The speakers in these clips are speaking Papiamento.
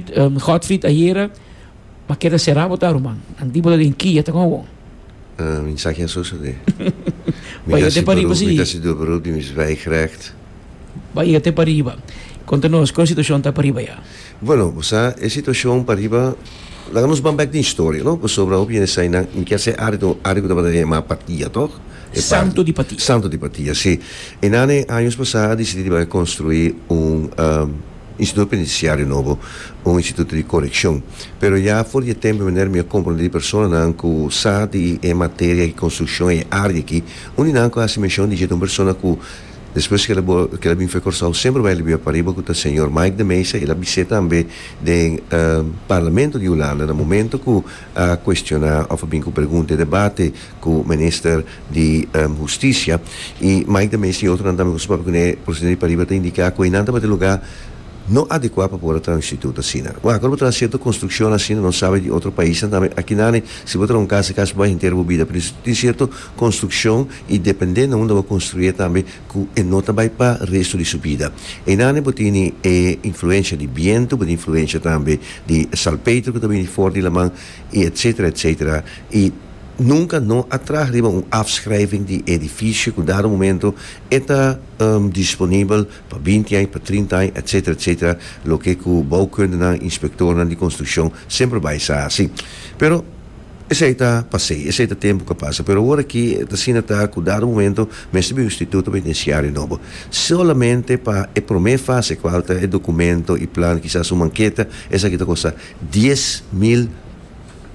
Godfried ayera a keda será bo ta ruman anti bo ta den ki a ta con awor. Mi sa ken so sode. Mi ta si beroep mi ta si do beroep di mi zwijg recht. Bo a yega te pariba. Conta nos con e situacion ta pariba ya. Bueno bo sa e situacion pariba laga nos ban bek den historia no pasobra hopi hende sa eynan mi kier sa areto un area cu tabata yama Patia toch? Santo di Patia. Santo di Patia si. Eynan den años pasa a decidi di bay construi un. i si no pa inisia di nobo un instituto di coreccion. Pero ya for di e tempo meneer mi a comprende di personanan cu sa di e materia di construccion e area aki unda nan cu a haci mencion di dje ta un persona cu despues cu el a bin fe Corsou semper bay libiba pariba cu ta señor Mike de Meza el a bise tambe den Parlamento di Hulanda na momento cu a cuestioná of a bin cu pregunta y debate cu Minister di Husticia y Mike de Mesa y otronan tambe cu su papia cu ne procedimiento di pariba ta indica cu eynan tabata e lugar no adecua pa por a traha un instituto asina. Bueno, aco lo bo traha cierto construccionnan asina, nos sabe di otro paisnan tambe, aki nani si bo traha un casa e casa bo bay henter bo bida pero tin cierto construccion y dependendo unda bo construi'e tambe, ku e no ta bai pa restu di su bida. Einande bo tini e influensha di bientu, bo tin influensha tambe di salpeitro ku ta bini for di laman i etsetera etsetera i nunka no a traha riba un afschrijving di e edifisio ku dado momento e ta disponibel pa binti aña, pa trinta aña etsetera etsetera loke ku bouwkundenan, inspektornan di konstrukshon semper bai sa hasi. Pero. Esei ta pasei, esei ta tempu ku a pasa, pero ora aki ta asina ta ku dado momento mester bin un instituto pa tin siario nobo. Solamente pa e promé fase ku falta e dokumento, e plan, kisas un manketa, esaki ta kosta dies mil,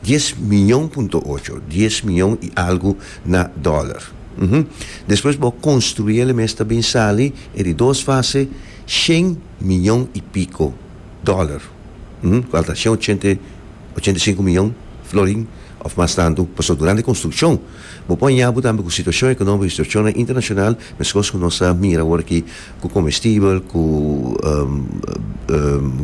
dies miyon punto ocho, dies miyon i algu na dòler. Uhum. Despues bo konstruí el e mes ta bin sali e di dos fase shen miyon i piko dòler. Uhum. Ku al ta shen ochenta i. ochenta i sinku miyon florin òf mas tantu. Pasobra durante konstrukshon bo por hañá bo tambe ku situashon ekonómiko i situashonnan internashonal, meskos ku nos a mira awor aki ku komestibel, ku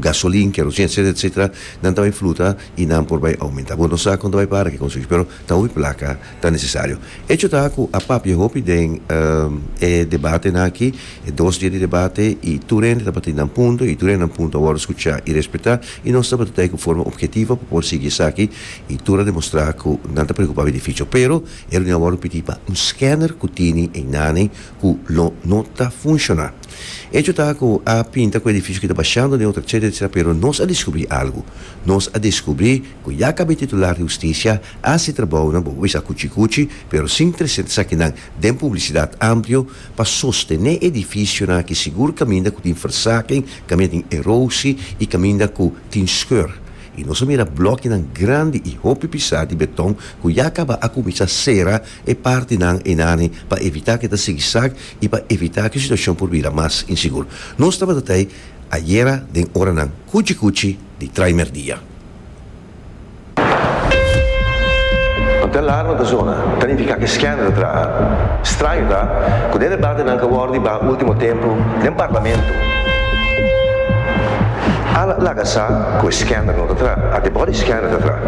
gasolin, kerosin etsetera etsetera nan ta bai fluta i nan por bai oumentá. Bo no sa kon ta bai para ki konstruksyon, pero ta hopi plaka. ta necesario. Hecho ta cu a papia hopi den e debatenan aki, e dos dia di debate, y tur hende tabatin nan punto y tur hende nan punto a wordo scucha y respeta, y nos tabatin ta cu forma objetivo pa por sigui esaki y tur a demostra cu nan ta preocupa di Fico. Pero e reunion a wordo pidi pa un scanner cu tini enanen cu lo no ta funciona. Hecho ta cu a pinta cu edificio ki ta bashando neutro etc etc pero nos a descubri algo. Nos a descubri ku ya kab'e titular di hustisia, a hasi trabounan bo wes a kuchi kuchi, pero sin tresenta esakinan den publisidat amplio, pa sostené edifisionan aki sigur kaminda ku tin versaking, kaminda tin erosi i kaminda ku tin skeur. I nos a mira blòkinan grandi i hopi pisá di beton ku ya kaba a kuminsá sera e partinan einani pa evitá ku e ta sigisag i pa evitá ku e situashon por bira mas insigur. Nos tabata ta ei ayera den oranan kuchi kuchi, di traimer dia. Hotel Larman ta zona ta nifica cu e scandal ta traha. Straño ta cu den debate nan ca wordo di baha ultimo tempo den parlamento, al a laga sa cu e scandal no ta traha, a debor di scandal ta traha.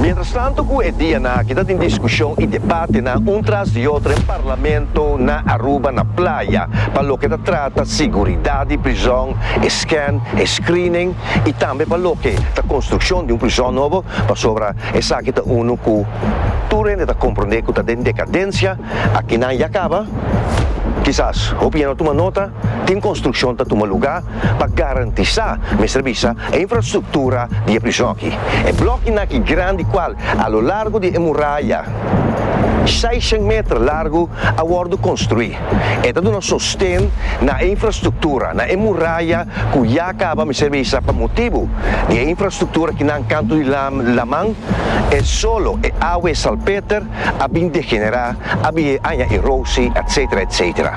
Mientrastanto cu e dia nan aki ta tin discusion y debatenan un tras di otro den parlamento na Aruba na pla. aya pa loke ta trata siguridad di prizon, e scan, e screening y tambe pa loke ta construccion di un prizon nobo, pasobra esaki ta uno cu tur hende ta comprende cu ta den decadencia, aki nan ya caba, kisas hopi ya no tuma nota, tin construccion ta tuma lugar. pa garantisá mester bisa e infrastruktura di e prison aki. E blòknan aki grandi kual a lo largu di e muraya seishèn meter largu a wòrdu konstruí. E ta duna sosten na e infrastruktura, na e muraya ku ya kaba mester bisa pa motibu di e infrastruktura ki nan kantu di laman e solo, e awa, e salpeter a bin degenerá, a bihe aña erosi, etsetera, etsetera.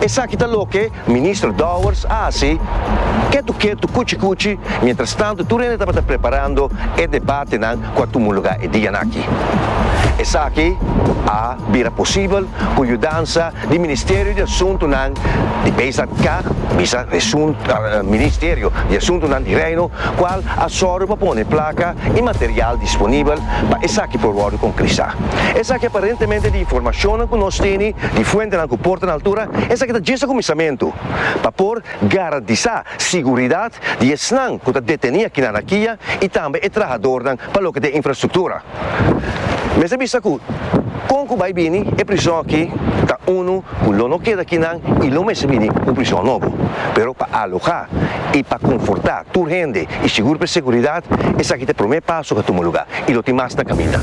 Esaki ta loke Minister Dowers a hasi ketu ketu, kuchi kuchi, mientras tanto tur hende tabata preparando e debatenan ku a tumulugá e dianan aki. Esaki a bira posibel ku yudansa di Ministerio di Asuntunan di Beisland Kah bisa Ministerio di Asuntunan di Reino kual a sòru pa pone plaka i material disponibel pa esaki por wòrdu konkrisá. Esaki aparentemente di informashonnan ku nos tene di fuentenan ku por ta na altura. Esaki ta djis e kuminsamentu pa por garantisá siguridat di esnan ku ta detení aki na Anakia i tambe e trahadornan pa loke ta e infrastruktura. Mester bisa ku kon ku bai bini e prison aki ta unu ku lo no keda aki nan i lo mester bini un prison nobo. Pero pa alogá i pa konfortá tur hende i sigur pa e siguridat, esaki ta e promé paso ku a tuma lugá. y lo tin mas na caminda.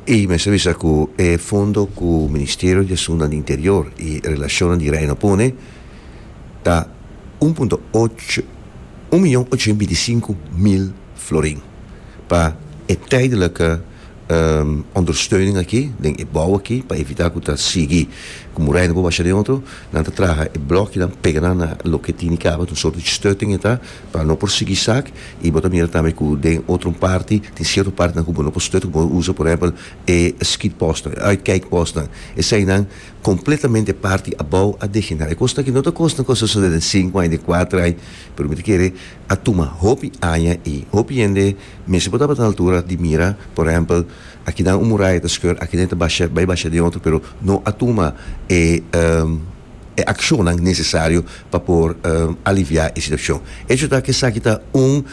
Y mester bisa cu e fondo cu Ministerio di Asunnan di Interior y Relacionnan di Reino pone ta un punto ocho, un miyon ocho hende binti sinku mil florin pa e tijdelijke ondersteuning aki den e bou aki pa evitá ku ta sigui ku murai no por basha den otro. Nan ta traha e blòknan pega nan na loke tini kaba, un sòrt di stutting e ta pa no por sigui sak. I bo ta mira tambe ku den otro parti tin sierto partinan ku bo no por stut, ku bo por usa por ehèmpel e skidpòstnan, e uitkijkpòstnan. Eseinan kompletamente parti abou a degenerá. E kosnan aki no ta kosnan ku a sosodé den sinku aña, den kuater aña, pero mi ta kere a tuma hopi aña i hopi hende. Mester bo tabata na altura di mira, por ehempel, akinan un muraya ta skeur, akinan e ta basha, bai basha den otro, pero no a tuma e e akshonnan nesesario pa por aliviá e situashon. Hecho ta ku esaki ta un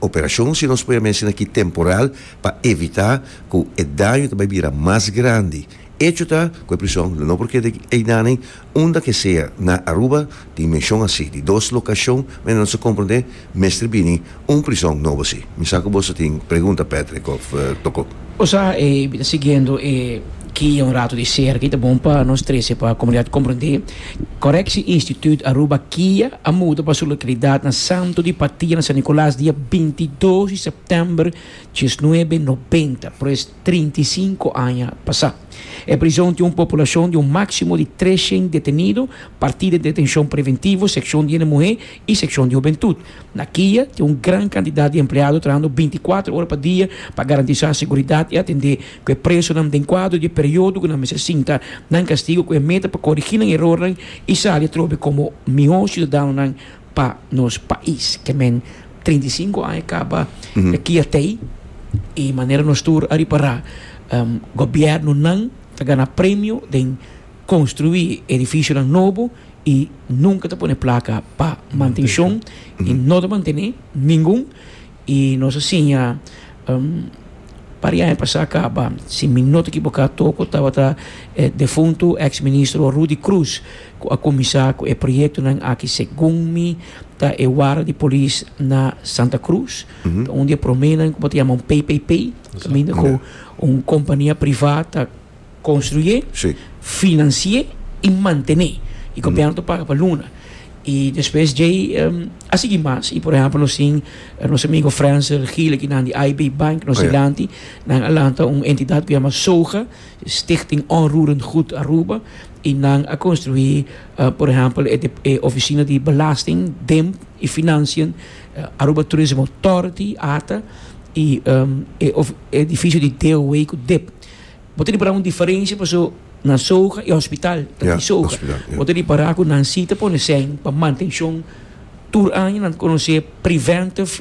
operashon, si nos poi a mester na ki, temporal, pa evitá ku e daño ta bai bira mas grandi. Hecho ta ku e prishon no por keda einan. Unda ke sea na Aruba tin menshon así di dos lokashon, mester nos a komprondé mester bini un prison nobo así. Mi sa ku bos a tin pregunta Patrick òf Toko. O sa e mi ta siguiendo e kia un ratu di serka i ta bon pa nos trese pa komunidat komprondé. Korekshi Instituut Aruba kia a muda pa su lokalidat na Santo di Patia na San Nikolas dia binti dos di sèptèmber diesnuebe nobenta. Por es. trinta i sinku aña pasá. E prison tin un populacion di un máximo di treshen detenido partí den detencion preventivo, seccion di hende muhé i seccion di hubentut. Na kia tin un gran cantidat di empleado trahando binti kuater ora pa dia pa garantisá seguridat i atendé ku e presonan den kuadro di e periodo ku nan mester sinta nan kastigo ku e meta pa korigí nan erornan i sali atrobe komo mihó siudadanonan pa nos pais, ke men treinta i sinku aña kaba e kia tei i manera nos tur a ripará gobièrnunan ta gana premio den konstruí edifisionan nobo i nunka ta pone plaka pa mantenshon i no ta mantené ningun i nos a siña par di aña pasá kaba si mi no ta ekiboká toko tabata e defuntu eks ministro Rudy Croes ku a kuminsá ku e proyektonan aki segun mi. Ta e wara di polis na Santa Cruz. Ta un di e proménan ku bo ta yama un PPP, kaminda ku un kompania privá ta konstrué, finansié i mantené. I gobièrnu ta paga pa luna. I despues djei a sigui mas. I por ehèmpel nos tin nos amigu Frensel Gile ki nan di IB Bank nos dilanti. Nan a lanta un entidat ku yama SOGA, Stichting Onroerend Goed Aruba, i nan a konstruí Por ehempel e ofisina di belasting den i financian Aruba Tourism Authority, ata, i e edificio di DOA cu dip. Bo ta ripara un diferencia paso na Soga e hospital ta di Soga. Bo ta ripara cu nan si ta pone seng pa mantencion tur aña nan ta conoce preventive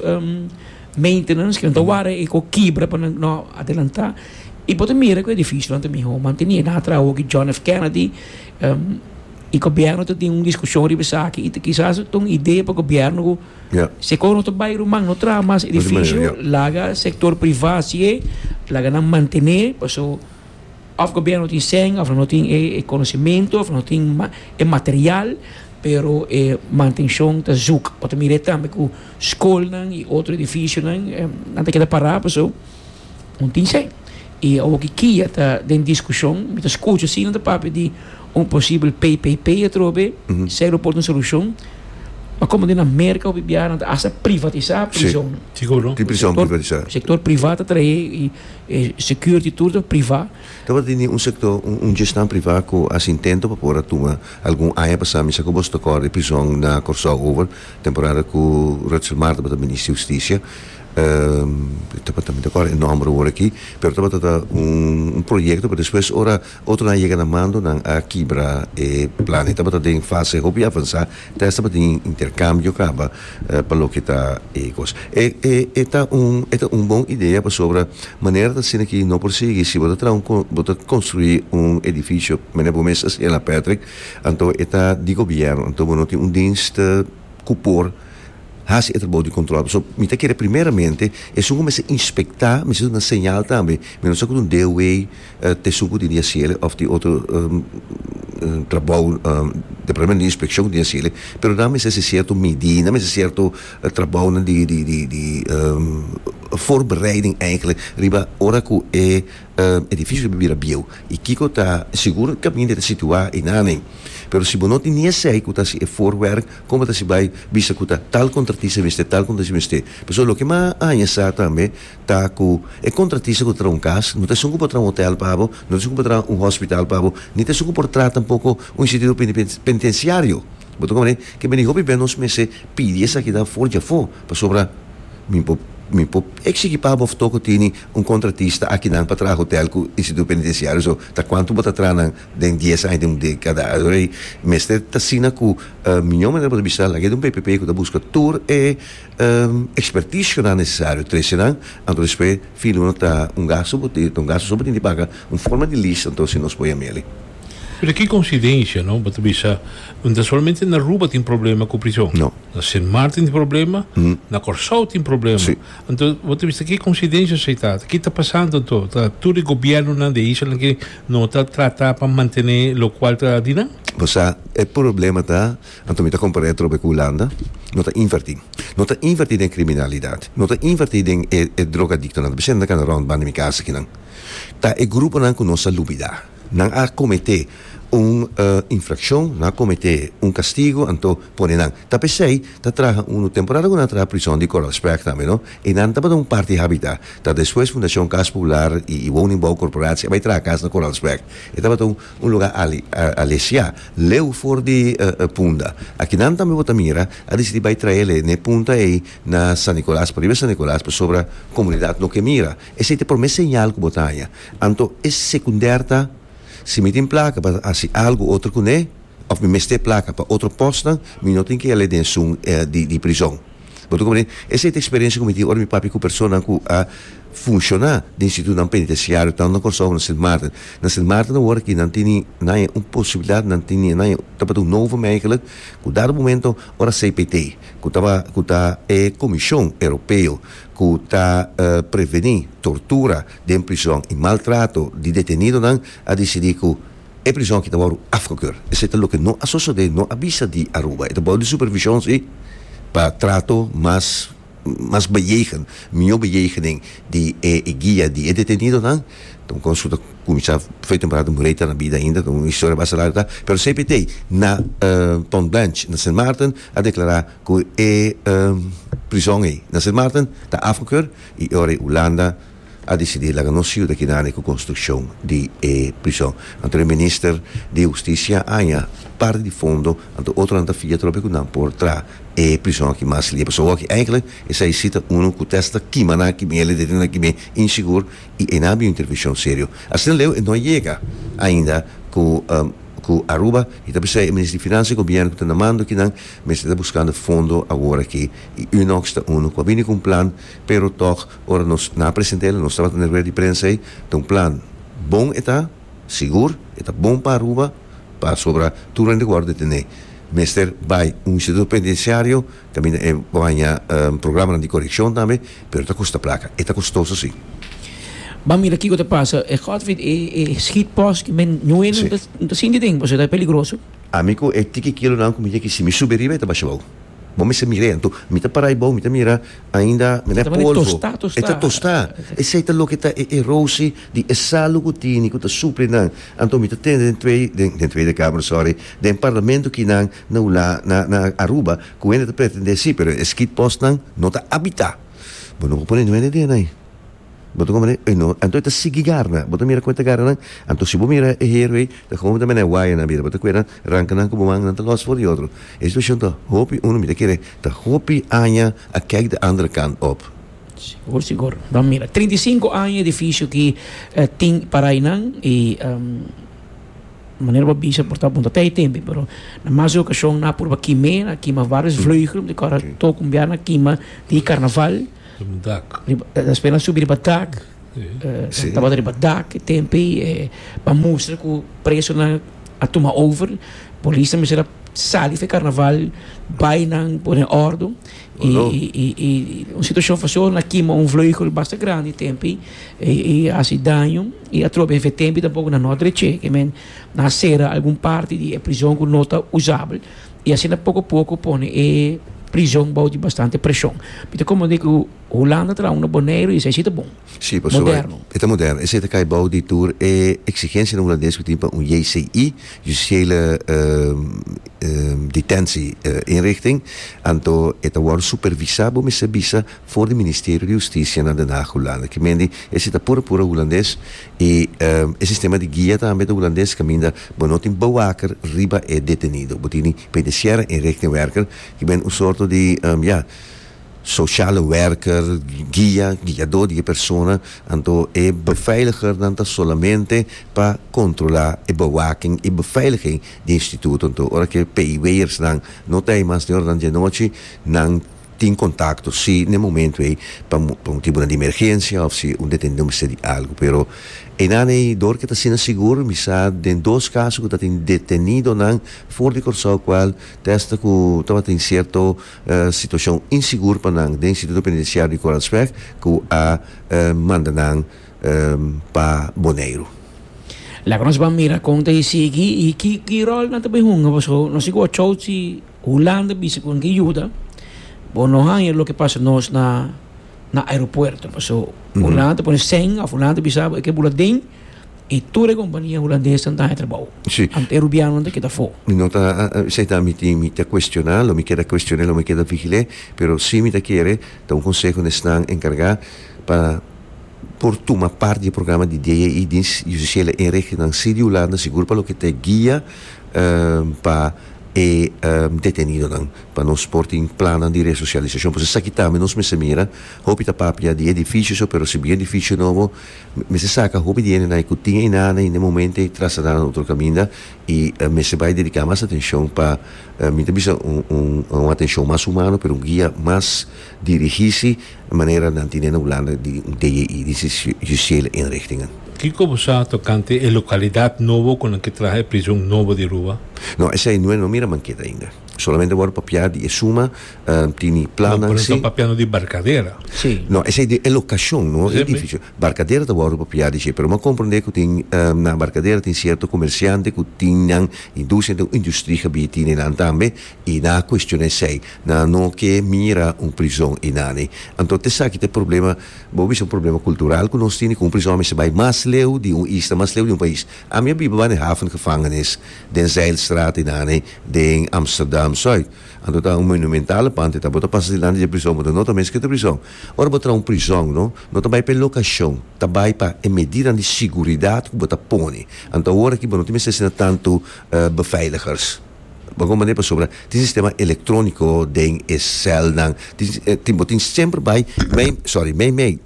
maintenance cu nan ta wara e cu kibra pa nan no adelanta. I bo ta mira cu e edificionan ta miho mantene. Nan a traha awo aki John F. Kennedy. E gobierno ta tin un diskushon riba esaki i kisas ta un idea pa gobierno ku si e kos no ta bai ruman no traha mas edifisio laga sektor priva hasié laga nan mantené paso òf gobierno tin sèn òf nan no tin e konosementu òf nan no tin e material pero e mantenshon ta zùk bo ta mira tambe ku skolnan i otro edifisionan nan ta keda pará paso. un tin sei. I a woki kia ta den diskushon, mi ta skucha asina ta papia di un posibel PPP atrobe, selo por ta un solushon. Ma komo den Amerka hopi biaha nan ta hasta privatisá prizonnan. Siguro. Tin prizon privatisá. Sektor privá ta traé i e security tur ta privá. Tabata di ni un sektor, un gestá privá ku a hasi intento pa por a tuma. Algun aña pasá mi sa ku boso ta kòrda e prizon na Kòrsou over, temporada ku Rutshelle Martha tabata Minister di Hustisia. tabata mi ta kòrda e nòmber awor aki pero tabata ta un proyekto pero despues ora otronan a yega na mando nan a kibra e plan e tabata den fase hopi avansá te hasta pa tin interkambio kaba pa loke ta e kos e e ta un e ta un bon idea pasobra manera ta asina aki no por sigui si bo ta traha un bo ta konstruí un edifisio manera bo mes a hasiel na Patrick anto e ta di gobièrnu anto bo no tin un dinst. ku por hasi e trabou di kontrol. So mi ta kere primeramente esun ku mester inspektá mester duna señal tambe, mi no sa ku ta un DOW ta esun ku tin di hasiel òf tin otro trabou departamento di inspekshon ku tin di hasiel pero nan mester hasi sierto midí, nan mester hasi sierto trabounan di di di di forbereiding eigelik riba ora ku e Edifisio debe bira bieu y kico ta sigur e caminda e ta situa y nan nen. Pero si bo no tin ni esey cu ta si e voorwerk, como ta si bay bisa cu ta tal contratista mester, tal contratista mester. Pasobra loke mas aña sa tambe ta cu e contratista cu ta traha un cas no ta esun cu por traha un hotel pa bo, no ta esun cu por traha un hospital pa bo, ni ta esun cu por traha tampoco un instituto penitenciario. Bo ta comprende? Kibera di hopi bey nos mester pidi esaki dan for djafo pasobra mi por mi por exigi pa bo of todo cu tini Un kontratista a kinan pa traha hotel ku instituto penitenciario so ta kuantu bo ta traha nan den dies aña den un dekada atrei mester ta asina ku miño manera bo ta bisa laga e ta un bpp ku ta buska tur e expertish ku ta nesesario trese nan anto despues fin uno ta un gasto bo tin ta un gasto so bo tin di paga un forma di lease anto si nos poia meli. Pero ki konsidensia no bo ta bisa no ta solamente na Aruba tin problema ku prison na Sint Maarten tin problema na Kòrsou tin problema. Anto bo ta bisa ki coincidencia esey ta? Ki ta pasando anto? Ta tur e gobiernonan di e isla ki no ta trata pa mantene locual ta di nan? Bo sa, e problema ta, anto mi ta compara e trobe cu Hulanda, no ta inverti. No ta inverti den criminalidad. No ta inverti den e drogadictonan. Ta presente nan cana rond banda mi casa akinan. Ta e gruponan cu nos a lubida. Nan a cometé un infraccion, nan a cometé un castigo, anto pone nan. Ta p'esey ta traha un temporada cu nan a traha prison di Coral Sprag tambe, no? Y nan tabata un parti habita, ta despues Fundacion Cas Popular y Woningbouw Corporatie a bay traha cas na Coral Sprag. E tabata un lugar alesiá, leu for di Punda. Aki nan tambe bo ta mira, a dicidi bay trael e n'e punta ey na San Nicolas, pariba San Nicolas, pasobra comunidad no ke mira. Esei ta promé señal ku bo ta haña. Anto e sekunder ta, Si mi tin plaka pa hasi algu otro kuné, òf mi mester plaka pa otro pòsnan, mi no tin ke yal'é den esun di prizòn. Bo ta komprendé? Esei ta eksperensia ku mi tin ora mi papia ku personanan ku a funshoná den institutnan penitensiario, tantu na Kòrsou ku na Sint Maarten. Na Sint Maarten awor aki nan teni nan haña un posibilidat, nan teni nan haña tabata un novo meikelijk ku dado momento ora CPT, ku ta e komishon europeo, ku ta prevení tortura den prison i maltrato di detenidonan a disidí ku e prison aki ta wòrdu afgekeur. Esei ta loke no a sosodé, no a bisa di Aruba. E ta bou di supervishon sí pa trato mas mas beyegen, mihó beyegenen di e guia di e detenidonan. Ton kon su ta kuminsá fei temporada Murray ta na bida ainda, un historia basta largu ta. Pero cpt na Pont Blanch na Sint Maarten a deklará. cu e prizon ey na Sint Maarten ta afgekeur y e ora ey Hulanda a dicidi laga nos yuda ekinan ey cu construccion di e prizon. Anto e Minister di Husticia a haña parti di fondo, anto otronan ta fia tropi cu nan por traha e prizon aki mas limpio. So awor aki eindelijk esey si ta uno cu test ta kima nan aki bien, lidente nan aki bien insegur y ey nan a bin un intervencion serio. Asina leu e no a yega ainda cu Aruba y ta p'esey e Minister di Financia y Gobierno cu ta na mando ekinan, Mester ta buskando fondo awor aki y Unox ta uno cu a bini cu un plan, pero toch ora nos na a presenta el, nos tabata na e rueda di prensa ey, ta un plan bon e ta, sigur, e ta bon pa Aruba, pasobra tur hende cu wou de tene mester bay un instituto penitenciario, caminda e por haña programanan di coreccion tambe, pero ta costa placa, e ta costoso si. Ban mira kico ta pasa, e Godfrid e schietpost cu men nue no ta sinti den, pasobra ta peligroso. Ami ku e tiki kilonan ku mi yeki, si mi subi riba e ta basha bou. Bo mester mir'e. Anto mi ta para ai bou, mi ta mira ainda mene polvo. E ta tostá. Esei ta loke ta e erosi di e salu ku tini, ku ta supli nan. Anto mi ta tende den Twee, den Tweede Kamer, sòri, den parlamento kinan na ula, na, na Aruba, ku hende ta pretendé sí, pero e skidpòstnan no ta abitá. Bo no por pone nu hende den ei. Bo ta komo ei no, anto e ta sigui garna, bo ta mira kon e ta garnanan, anto si bo mira e hero ei ta komo bo ta mene waya na bira, bo ta kuenan ranka nan ku bo man nan ta los for di otro. E situashon ta hopi uno mi ta kere ta hopi aña a kèk di andere kant òf. Sigur sigur, nan mira trinta i sinku aña e edifisio aki tin parainan i manera bo a bisa por ta punta ta e tempu pero na mas e okashon nan a purba kim'é, nan a kima varios vleugel, mi ta kòrda tok un biaha nan a kima di karnaval. Riba dak. Ta spera subi riba dak. Si. Tabata riba dak e tempe e a mustra ku presonan a tuma over. Polisnan mester a sali for e karnaval bai nan pone òrdu i Bueno. i i un situashon van so na kima un vleugel basta grandi e tempe i hasi daño i atrobe e tempe tampoco na Nordre che ke men na sera algun parti di e prison ku no ta usabel. I asina poko poko pone e prison bou di bastante presion. Mi ta komprende ku Hulanda ta dal unu Boneiru i esei si ta bon, moderno. Si, pasobra e ta moderno. Esei ta kai bou di tur e eksigensianan hulandes ku tin pa un JCI, Justitiële Detentie Inrichting, anto e ta wòrdu supervisá, bo mester bisa, for di Ministerio di Hustisia na Den Haag, Hulanda. Ki mende esei ta pura pura hulandes Y e sistema di guia tambe ta Hulandes caminda bo no tin bewaker riba e detenido. Bo tini penitenciara inrichtingwerker ki been un sorto di, ya, sociale werker, guia, guiado di e persona. Anto e beveiligernan ta solamente pa controla e bewaking y beveiliging di instituto. Anto ora cu e PIW'ers nan no ta ey mas den ora nan di anochi nan. tin contacto si n'e momento ey pa pa un tipo nan di emergencia of si un detenido mester di algo pero einan ey dor ke ta asina sigur mi sa den dos caso cu ta tin detenido nan for di Curaçao cual testa cu tabatin cierto situacion insigur pa nan den instituto penitenciario di Koransweg cu a manda nan pa Boneiru. Laga nos ban mira con ta e sigui y ki ki rol nan ta bay hunga paso nos sigui wou chow si. Hulanda bisa ku nan ke yuda, bo no haña loke pasa nos na na aeropuerto. Paso Hulanda ta pone sen of Hulanda ta bisa bo e ke bula den i tur e kompania hulandesnan ta haña trabou. Sí. Anto e rubianonan ta keda afó. Mi no ta seita mi tin mi ta kuestioná lo mi keda kuestion'é lo mi keda vigil'é, pero si mi ta kere ta un konseho na esnan enkargá pa por tuma parti di e programa di DAI di Justisiela en regionnan, si di Hulanda sigur pa loke ta e guia pa. e detenidonan pa nos por tin plannan di resosialisashon por esaki tambe nos mester mira hopi ta papia di edifisio so pero si bin edifisio nobo mester saka hopi di hendenan ku tin einan ain den e momento ei trasladá na otro kaminda i mester bai dediká mas atenshon pa mi ta bisa un atenshon mas humano pero un guia mas dirigí si e manera nan tine na Hulanda di un DJI di si juiciele inrichtingen. Kiko bo sa tokante e lokalidad nobo ku nan ke traha e prision nobo di Aruba? No, esei no e no mira manket ainda. Solamente wòrdu papiá di e suma, tini plannan si. No, pero nan ta papiando di Barcadera. Si. No, esei di e lokashon, no e edifisio. Barcadera ta wòrdu papiá di dje, pero m'ha komprondé ku tin na Barcadera tin sierto komersiante ku tin nan industria, tin un industri gebied tine nan tambe, i nan a cuestioná esei, nan a no ke mira un prizon i nan e. Anto ta esaki ta e problema, bo bisa un problema cultural cu nos tini cu un prizon a mester bai mas leu di un isla, mas leu di un pais. Ami a biba banda e Hafengevangenis den Zijlstraat i nan e den Amsterdam Zuid. Anto ta un monumentale pand e ta, bo ta pasa dilanti dje prizon bo ta nota mes ke ta prizon. Ora bo traha un prizon no, no ta bai pa e locacion, ta bai pa e medidanan di siguridad cu bo ta pone. Anto awor aki bo no tin mester asina tantu beveiligers. Bo con mane pasobra tin sistema electronico den e celnan, tin tin bo tin semper bay mey sorry mey mey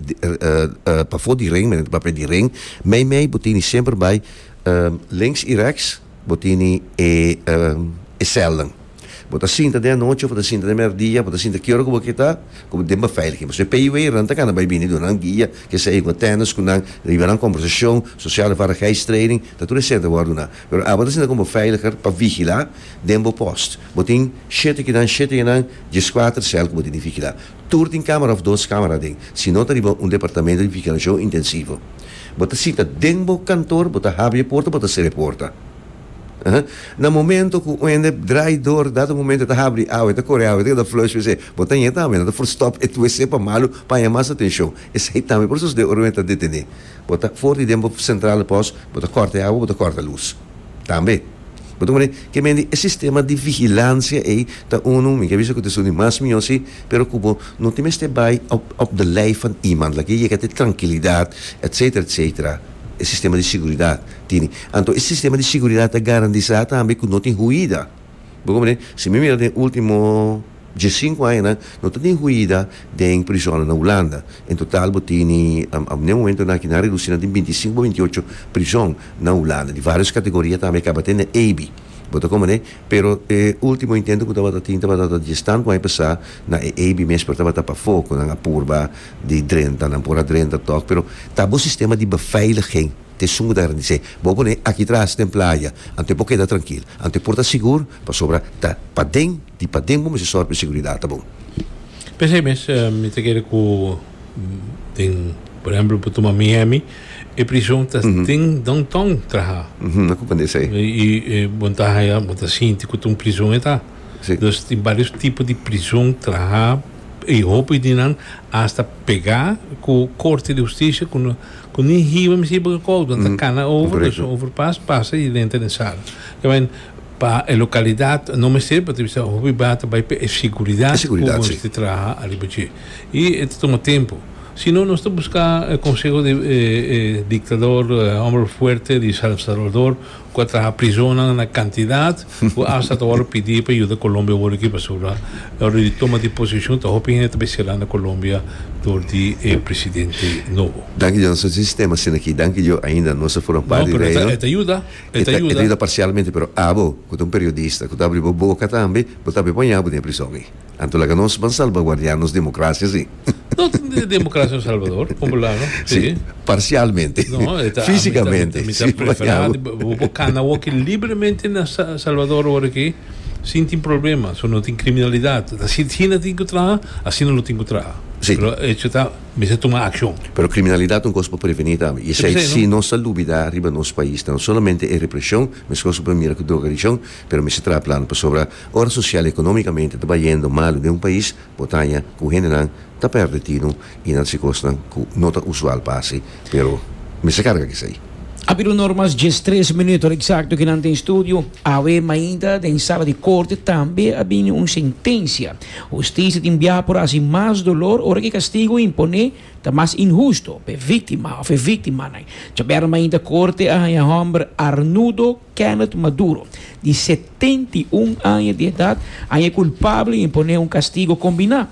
pafo di ring menen papel di ring mey mey bo tini semper bay links y rechts bo tini e e celnan bo ta sinta den anochi of bo ta sinta den merdia bo ta sinta kiora cu bo ke ta cu den beveiliging pasobra e peiwei ran ta gana bay bini duna nan guia ke seja cu atendas cu nan riba nan conversacion sociale vaardigheidstraining ta tur e center wor duna. Pero abo ta sinta como veiliger pa vigila den bo post. Bo tin shete kinan, shete enan, dieskuater cel cu bo tin di vigila. Tur tin camera of dos camera aden, si no ta riba un departamento di vigilacion intensivo. Bo ta sita den bo kantor, bo ta habri e porta, bo ta sera e porta. Aha. Na momento cu oende draai door, dat e momento e ta habri, awe ta core, awe ta keda flush wc. Bo ta yen tambe, nan ta for stop e wc pa malo paña mas atencion. Esai tambe por sucede ora oende ta detene. Bo ta for di den bo sentral di pos, bo ta kòrta e awa, bo ta kòrta lus tambe. Bo ta mira ke men di e sistema di vigilansia ei ta unu, mi ke bisa ku ta su di mas mihó si, pero ku bo no tin mester bai op op de lijf van iemand. La ke yega te trankilidat etsetera etsetera e sistema di siguridat tini. Anto e sistema di siguridat ta garantisá tambe ku no tin huida. Bo komprende? Si mi mira den último. Dje sinku añanan no ta tin huida den prizonnan na Hulanda. En total bo tini ap ne momento nan aki nan redusí nan tin binti sinku pa binti ocho prizon na Hulanda, di vários kategoria tambe kaba te na Ebi. Bo ta kon manera, pero e último intento ku tabata tin tabata ta dies tantu aña pasá na e Ebi mes pero tabata pafó ku nan a purba di drenta nan, por a drenta tòg, pero ta bo sistema di beveiliging ta esun ku ta garandis'é, bo a pone aki tras den playa, anto e por keda trankil, anto e por ta sigur, pasobra ta paden. Di paden bo mester sòru pa e seguridat ta bon. P'esei mes mi ta kere ku den por ehèmpel pa tuma Miami e prison ta den downtown trahá. Nan ku kende esei. I bo ta haya bo ta sinti ku ta un prison e ta. Dus tin varios tipo di prison trahá i hopi di nan asta pegá ku korte di hustisia ku no ku ni hiba mester hiba kakout nan ta kana over dus overpass pasa i renta den sala. Pa e localidad no mester pa ta bisa hopi bá ta bay p'e seguridad. E seguridad, si. Cu nos ta traha ariba dje. Y e ta tuma tempo. Si no nos ta busca e conseho di e e dictador, hombre fuerte di San Salvador cu a traha prisonan na cantidad cu hasta ta wòrdu pidi pa yuda Colombia wòrdu aki pasobra ora di tuma di posicion ta hopi hende ta bay sela na Colombia dor di e presidente nobo. Danki Dios nos tin sistema asina aki. Danki Dios ainda nos ta forma parte di Reino. No, pero e ta yuda. E ta yuda. E ta yuda parsialmente, pero abo ku ta un periodista ku ta abri bo boka tambe, bo ta be poña abo den e prison ei. Anto laga nos ban salbaguardiá nos demokrasia si. No tin demokrasia na Salvador, kon bo laga? Si. Si, parsialmente. No, e ta. Físikamente. Mi ta, mi ta preferá di bo por kana woki libremente na Salvador ora aki sin tin problema, so no tin kriminalidat. Asina tin ku traha, asina lo tin ku traha. Si. Pero echo ta. mester tuma akshon. Pero kriminalidat un kos pa prevení tambe i esei si nos ta lubidá riba nos pais ta no solamente e represhon, meskos ku por mira ku drogadikshon, pero mester traha plan pasobra ora sosial i ekonomikamente ta bayendo malu den un pais, bo ta haña ku hendenan ta pèrdè tinu i nan si kosnan ku no ta usual pase. pero mester carga kisey. A habido normas diestres minuto exacto ki nan tin studio. Awe mainta den sala di corte tambe a bini un sentencia. Husticia tin bia por haci mas dolor ora ki castigo impone ta mas inhusto p'e victima of e victimanan. Djaberna mainta corte a haya homber Arnudo Kenneth Maduro di setenta i un aña di edad haya culpable y impone un castigo combina.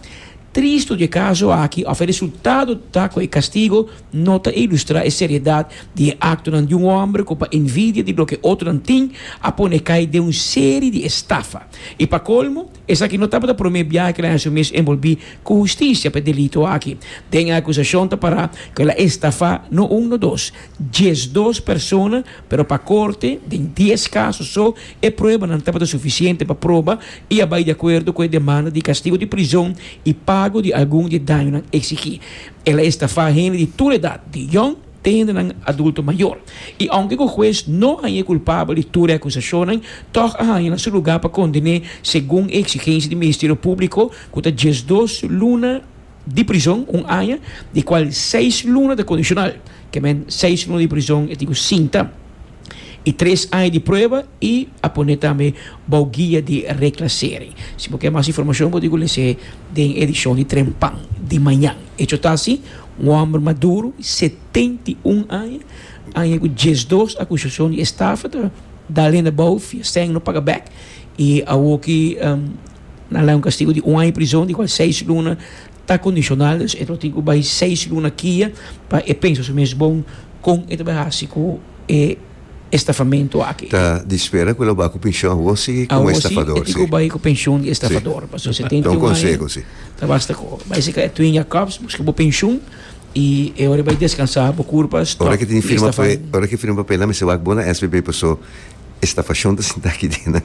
Tristu di e kaso aki òf e resultado ta ku e kastigo no ta ilustrá e seriedat di e aktonan di un hòmber ku pa envidia di loke otronan tin a pone kai den un seri di estafa. I pa kolmo, esaki no tabata promé biaha ku el a haña su mes enbolbí ku hustisia pa e delito aki. Den e akusashon ta pará ku el a estafá no un no dos, diesdos persona, Pero pa Korte, den dies kaso so, e pruebanan tabata sufisiente pa proba i a bai di akuerdo ku e demanda di kastigo di prizon i pago di algun di e dañonan eksigí. El a estafá hende di tur edat, di yòn te hendenan adulto mayor. I ounke ku hues no a hañ'é kulpabel di tur e akusashonnan, tòg a haña na su lugá pa kondené segun e eksigensia di Ministerio Públiko ku ta diesdos luna di prizon un aña, di kual seis luna ta kondisional, ke men seis luna di prizon e tin ku sinta, i tres aña di prueba i a pone tambe bou guia di reklasering. Si bo ke mas informashon bo tin ku lese den edishon di Trempan di mañan. E chotasi, un hòmber maduru di setenta i un aña, aña ku dies dos akusashon di estafa ta dal hende bou via sèn no paga bèk i awoki. Nan la un kastigu di un aña prison, di kual seis luna ta kondishonal. Dus e lo tin ku bai seis luna kia pa e pensa su mes bon kon e ta bai hasi ku e estafamentu aki. Ta di spera ku el lo bai ku penshon awor si komo estafador. Si, e tin ku bai ku penshon di estafador pasobra setenta i un aña ta basta ku bai sika e Twin Jakobs buska bo penshon i e ora e bai deskansa bo kurpa stòp di estafá. Ora ke firma papel nan mester wak bo na SBB paso. E stafashon ta sintá aki den nan.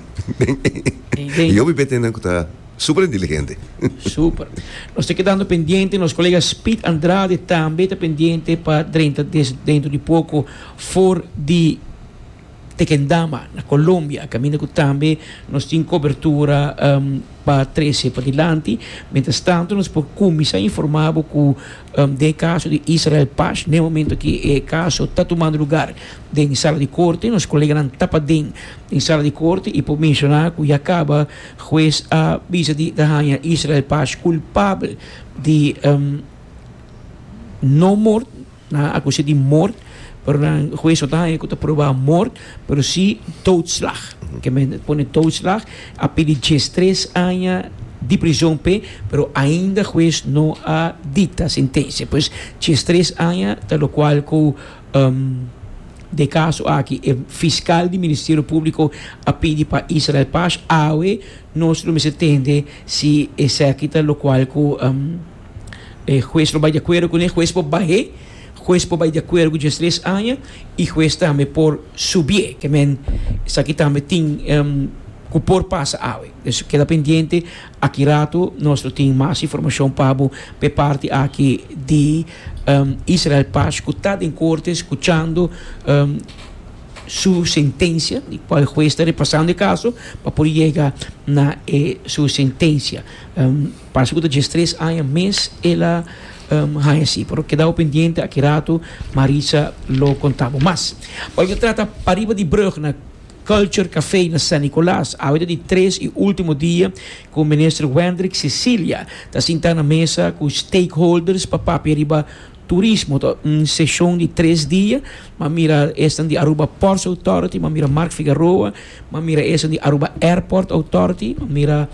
I hopi bete nan ku ta super inteligente. Super. Nos ta kedando pendiente. Nos kolega Speed Andrade tambe ta pendiente pa drenta des dentro di poko for di Tequendama na Colombia. Kaminda ku tambe nos tin kobertura pa trese padilanti. Mientras tanto nos por kuminsá informá bo ku Den e kaso di Israel Pash, na e momento ki e kaso ta tumando lugar den sala di korte, nos koleganan ta paden den sala di korte i por menshoná ku ya kaba hues a bisa di ta haña Israel Pash kulpabel di no mort, nan a akus'é di mort. Pero nan hues no ta haña cu ta proba mort, pero si doodslag. Ke men pone doodslag, a pidi dies tres aña di prision p'e, pero ainda hues no a dicta sentencia. Pues dies tres aña ta locual cu den e caso aki e fiscal di Ministerio Publico a pidi pa Israel Paz, awe nos lo mester tende si esaki ta locual cu E hues lo bai di akuerdo kuné, e hues por bah'é, hues por bai di akuerdo ku djes tres aña i hues tambe por subié. Ke men, esaki tambe tin ku por pasa awe. Pues keda pendiente, aki ratu nos lo tin mas informashon pa bo p'e parti aki di Israel Paz ku ta den korte skuchando su sentensia, di kua e hues ta repasando e kaso pa por yega na e su sentensia. Parse ku ta djes tres aña mes el a haña así. Pero kedaw pendiente aki ratu, Marisa lo konta bo mas. Ora ta trata pariba di brug na Culture Café na San Nicolas, awe ta di tres i ultimo dia ku Minister Wendrick Cecilia ta sinta na mesa ku stakeholders pa papia riba turismo. Ta un seshon di tres dia, m'a mira esnan di Aruba Ports Authority, m'a mira Mark Figaroa, M'a mira eso di Aruba Airport Authority, m'a mira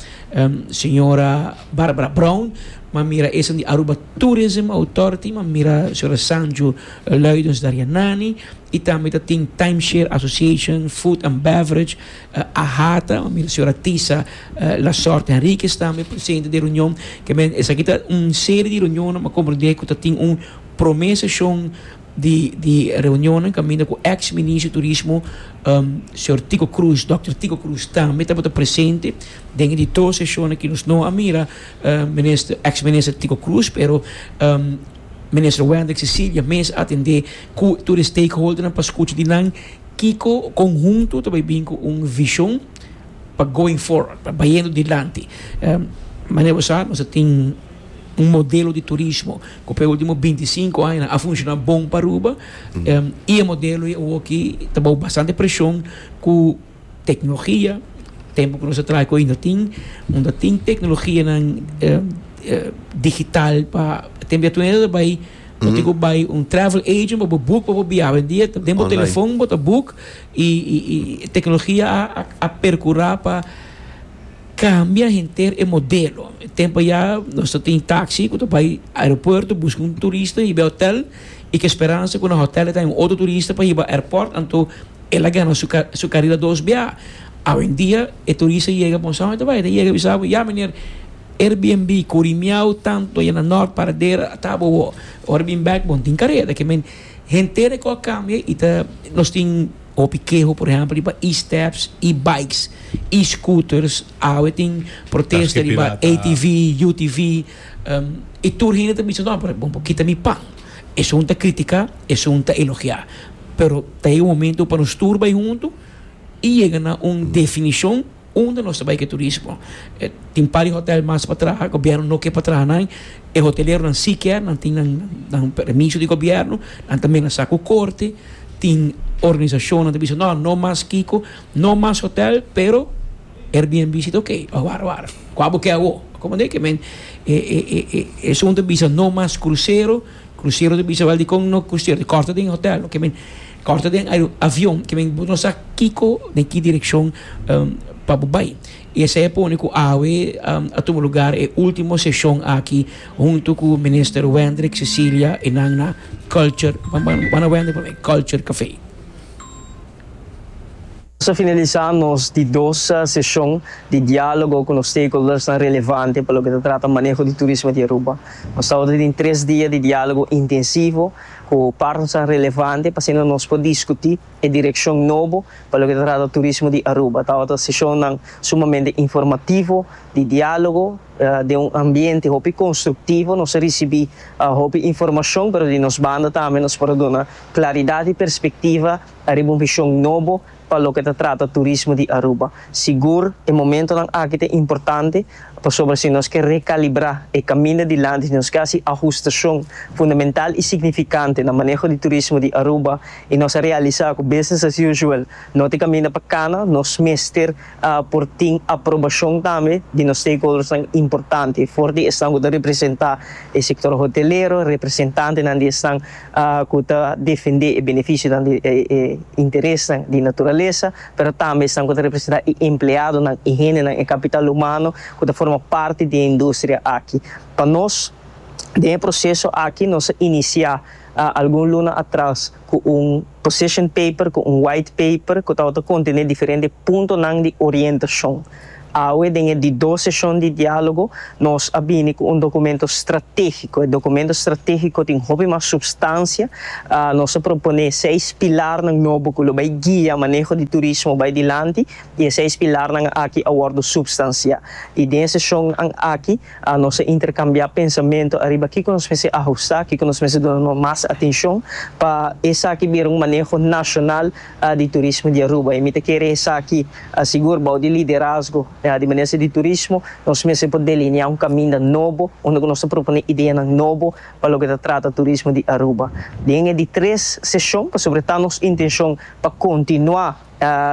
señora Barbara Brown, m'a mira eso di Aruba Tourism Authority, m'a mira señora Sanju Luidens Darianani, y tambe ta tin Timeshare Association, Food and Beverage, AHATA, m'a mira señora Tisa Lasorte Henriquez tambe presente den e reunion. K'e men esaki ta un serie di reunionnan m'a comprende cu ta tin un prome seshon. di reunionnan kaminda ku eks minister turismo señor Tico Cruz, Dòkter Tico Cruz, tambe tabata presente den e di tur seshon aki. Nos no a mira minister, eks minister Tico Cruz, pero minister Wendrick Cecilia mes a atendé ku tur e stakeholdernan pa skucha di nan kiko kon huntu ta bai bin ku un vishon pa going forward, pa bayendo dilanti. Manera bo sa, nos a tin Un modelo di turismo ku p'e último binti sinku añanan a funshoná bon pa Aruba i e modelo i awoki ta bou bastante preshon ku teknologia, tempu ku nos a traha ku ainda tin unda tin teknologianan digital pa tempu di atunde ta bai bo tin ku bai un travel agent pa bo book pa bo biaha. Awendia ta den bo telefon bo ta book i teknologia a perkurá pa. Cambia henter e modelo. E tempo ya nos ta tin taxi cu ta bay aeropuerto busca un turista hiba e hotel y cu e speransa cu na hotel e ta haña otro turista pa hiba airport anto el a gana su su carida dos biaha. Awendia e turista yega bon sao e ta bay e ta yega bisa bo ya meneer Airbnb curi miau tanto ya na Noord Paradera a tabo awo ora bin back bon tin careda. Ke men henter e cosa a cambia y ta nos tin. Hopi keho por ehempel riba e-steps, e-bikes, e-scooters, awe tin protesta riba ATV, UTV, y tur hende ta bisa no pero bon por kita mi pan. Esun ta critica, esun ta elogia. Pero ta yega un momento pa nos tur bay hunto y yega na un definicion. Unda nos ta bai ku e turismo? Tin un par di hotèl mas patraha gobièrnu no ke pa traha nan. E hoteleronan si kier, nan tin nan permiso di gobièrnu, nan tambe na sa ku korte. Tin organisashonnan ku ta bisa nò, no mas kiko, no mas hotèl, pero airbnb si ta oke. Wara, wara, kua bo ke awó? Akomod'é ke men e esun ta bisa no mas krusero, krusero ta bisa, wèl dikon no krusero? Di kòrta den hotèl? Oke men. Kòrta den avion ke men bo no sa kiko den ki direkshon pa bo bai. I esei a pone ku awe a tuma lugar e último seshon aki huntu ku Minister Wendrick Cecilia i nan na Culture, bai na Wendrick pa mi, Culture Café. Nos a finalisá nos di dos seshon di diálogo ku nos stakeholdersnan relevante pa loke ta trata maneho di turismo di Aruba. Nos tabata tin tres dia di diálogo intensivo. ku partenan relevante pa asina nos por diskutí e direkshon nobo pa loke ta trata turismo di Aruba. Tabata seshonnan sumamente informativo, di diálogo, den un ambiente hopi konstruktivo. Nos a risibí hopi informashon, pero di nos banda tambe nos por a duna klaridat i perspektiva ariba un vishon nobo Pa loke ta trata turismo di Aruba, sigur e momentonan aki ta importante pasobra si nos ke rekalibrá e kaminda dilanti, si nos ke hasi ahustashon fundamental i signifikante na maneho di turismo di Aruba i nos a realisá ku business as usual no ta e kaminda pa kana, nos mester. por tin aprobashon tambe di nos stakeholdersnan importante for di esnan ku ta representá e sektor hotelero, representantenan di esnan ku ta defendé e benefisionan di e interesnan di naturalesa, pero tambe esnan ku ta representá e empleadonan, e hendenan, e kapital humano ku ta forma parti di e industria aki. Pa nos, den e proseso aki nos a inisiá algun luna atras, ku un position paper ku un white paper ku tabata kontené diferente puntonan di orientashon. Awe den e di dos seshon di diálogo nos a bini ku un dokumento stratégiko. E dokumento stratégiko tin hopi mas supstansia. Nos a proponé seis pilarnan nobo ku lo bai guia maneho di turismo bai dilanti i e seis pilarnan aki a wòrdu supstansiá. I den e seshonnan aki A Nos a interkambiá pensamentu ariba kiko nos mester ahustá, kiko nos mester duna mas atenshon pa esaki bira un maneho nashonal di turismo di Aruba. I mi ta kere esaki sigur bou di liderazgo di Minister di Turismo. Nos mester por delineá un kaminda nobo unda ku nos ta proponé ideanan nobo pa loke ta trata turismo di Aruba. Den e di tres seshon pasobra ta nos intenshon pa kontinuá.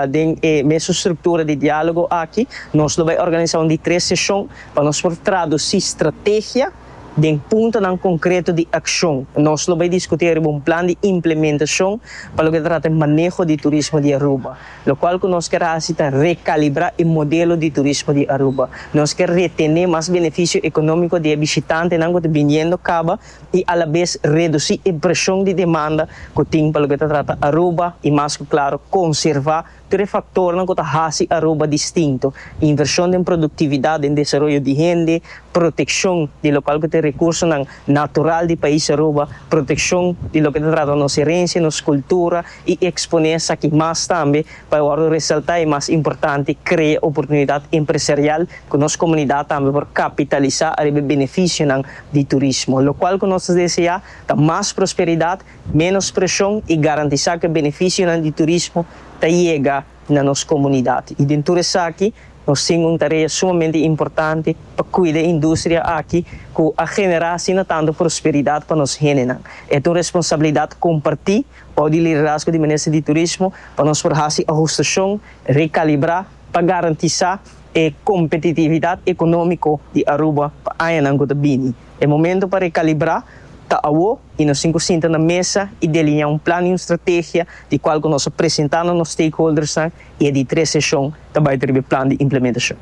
Den e mesun struktura di dialogo aki nos lo bai organisa un di tres seshon pa nos por tradusi strategia den puntonan konkreto di akshon. Nos lo bai diskutí ariba un plan di implementashon pa loke ta trata e maneho di turismo di Aruba. Lokual ku nos kier hasi ta rekalibrá e modelo di turismo di Aruba. Nos kier retené mas benefisio ekonómiko di e bishitantenan ku ta biniendo kaba. i alabes redusi e preshon di demanda ku tin pa loke ta trata Aruba i mas ku klaru konservá tur e faktornan ku ta hasi Aruba distinto, invershon den produktividat, den desaroyo di hende, protekshon di lokal ku tin rekursonan natural di pais Aruba, protekshon di loke ta trata nos herensia, nos kultura i eksponé esaki mas tambe. Pa e wòrdu resaltá e mas importante krea oportunidat empresarial ku nos komunidat tambe por kapitalisá ariba e benefisionan di turismo. Lokual ku nos ta deseá ta mas prosperidat, ménos preshon i garantisá ku e benefisionan di turismo ta yega na nos komunidat. I den tur esaki nos tin un tarea sumamente importante pa kuida e industria aki ku a generá asina tantu prosperidat pa nos hendenan. E ta un responsabilidat kompartí. Pau di liderazgo di Minister di Turismo pa nos por hasi ahustacion, recalibra pa garantisa e competitividad economico di Aruba pa añanan cu ta bini. E momento pa recalibra ta awo y nos tin cu sinta na mesa y delinea un plan y un strategia di cual cu nos a presenta na nos stakeholdersnan y e di tres sesion ta bay ta riba e plan di implementacion.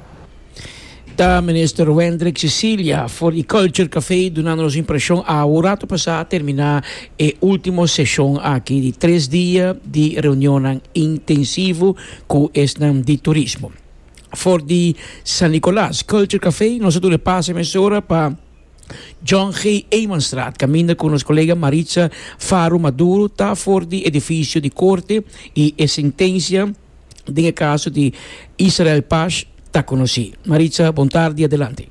Ta Minister Wendrick Cecilia for di Culture Café dunando nos impresion awe un rato pasá terminá e ultimo seshon aki di tres dia di reunionnan intensivo ku esnan di turismo. For di San Nicolas Culture Café nos a duna e pase mesora pa John G. Emanstraat kaminda ku nos kolega Maritza Faro Maduro ta for di edifisio di korte i e sentensia den e kaso di Israel Pash ta konosí. Maritza, Bon tardi, adelante.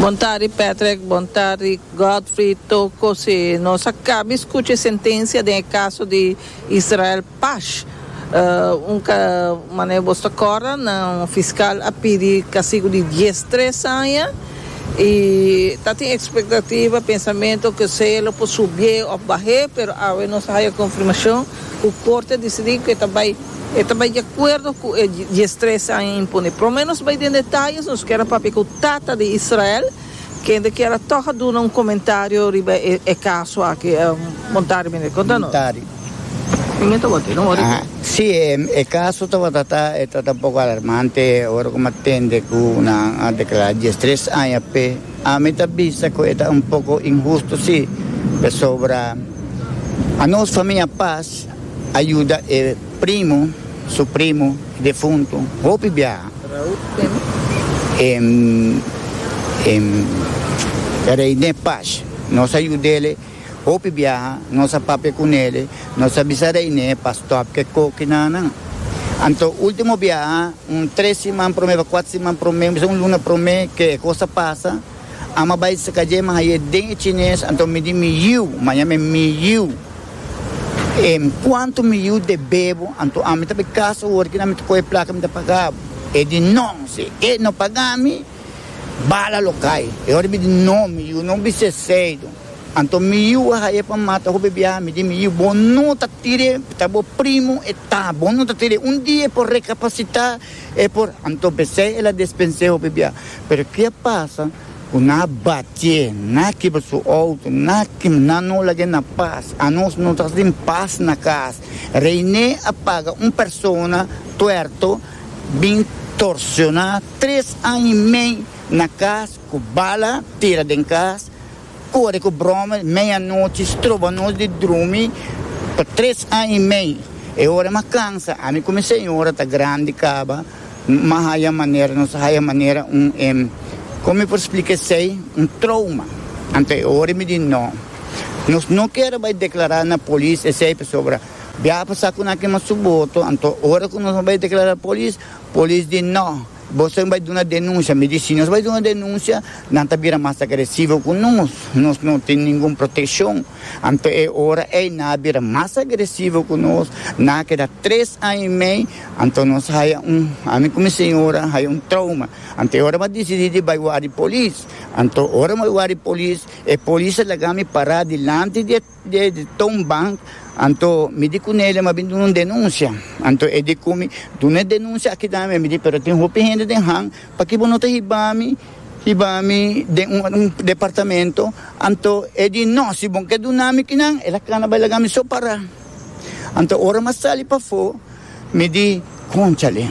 Bon tardi Patrick, bon tardi Godfrey, Toko, si nos a kabi skucha e sentensia den e kaso di Israel Pash, un ka manera bos ta kòrda nan fiskal a pidi kasigu di dies tres aña, I ta tin ekspektativa, pensamentu, ku esei lo por subié òf bah'é, pero awe nos a haya konfirmashon ku Korte a disidí ku e ta bai e ta bai di akuerdo ku e dies tres aña imponé. Pero me nos bai den detayes, nos kier a papia ku tata di Israel, kende kier a tòg a duna un komentario riba e kaso aki. Montari, mi ta konta nos. Montari, Siem e kaso tabata ta, e ta ta poko alarmante ora ku mi a tende ku nan a deklará dies tres aña p'e. Ami ta bisa ku e ta un poko inhusto si, pasobra anos famia pas a yuda e primu, su primu, defuntu hopi biaha. Reine Pash nos a yud'e. Hopi biaha nos a papia cu Nele, nos a bisa Reiné pa stop cu e coki nanan. Anto ultimo biaha, un tres siman prome pa cuatro siman prome, bisa un luna prome cu e cos a pasa, Am a bay sca dje mahaye den e Chines, anto mi di mi yiu, maña mi mi yiu, en cuanto mi yiu debebo, anto ami ta bay casa ora cu nan mi ta coge e placa mi ta pagabo. E di no, si e no pagami, Bala lo cay. E ora mi di, No, mi yiu, no bisti esey no. Anto mi yiu a haya pa mata hopi biaha. Mi di, Mi yiu, bo no ta tira e, ta bo primo e ta. Bo no ta tira e. Un dia e por recapacita, e por. Anto pesey el a despens'é hopi biaha. Pero ke a pasa cu nan a batié, nan a kibra su auto, nan a kibra, nan no lag'é na pas. Anos no ta tin pas na cas. Reiné a paga un persona tuerto bin torciona Tres aña y mey na cas cu bala tira den cas, core cu broma meya nochi, stroba nos di drumi pa tres aña y mey. E ora m'a cansa, ami cu mi señora ta grandi caba, m'a haya manera, nos a haya manera un em, como mi por splica esey, un trauma. Anto e ora mi di no, nos no ker a bay declara na polis esey pasobra biaha pasa cu nan a kema su boto, anto ora cu nos a bay declara polis, Polis di, No, boso bai duna denuncia. Mi di, Si nos bai duna denuncia, nan ta bira mas agresivo cu nos. Nos no tin ningun proteccion. Anto e ora ey nan a bira mas agresivo cu nos. Nan a keda tres aña y mey. Anto nos haya un, ami cu mi señora, haya un trauma. Anto e ora mi a dicidi di bai wari polis. Anto ora mi bai wari polis, e polis a laga mi para dilanti di e. de Town Bank, anto mi di cu Nelia mi a bin duna un denuncia, anto e di cu mi, Duna e denuncia aki dame a mi, mi di pero tin hopi hende den han, paki bo no ta hiba mi, hiba mi den un un departamento, anto e di no si bo ke duna mi kinan el a cana bay laga mi so para, anto ora mi a sali pafo. Mi di, Conchale,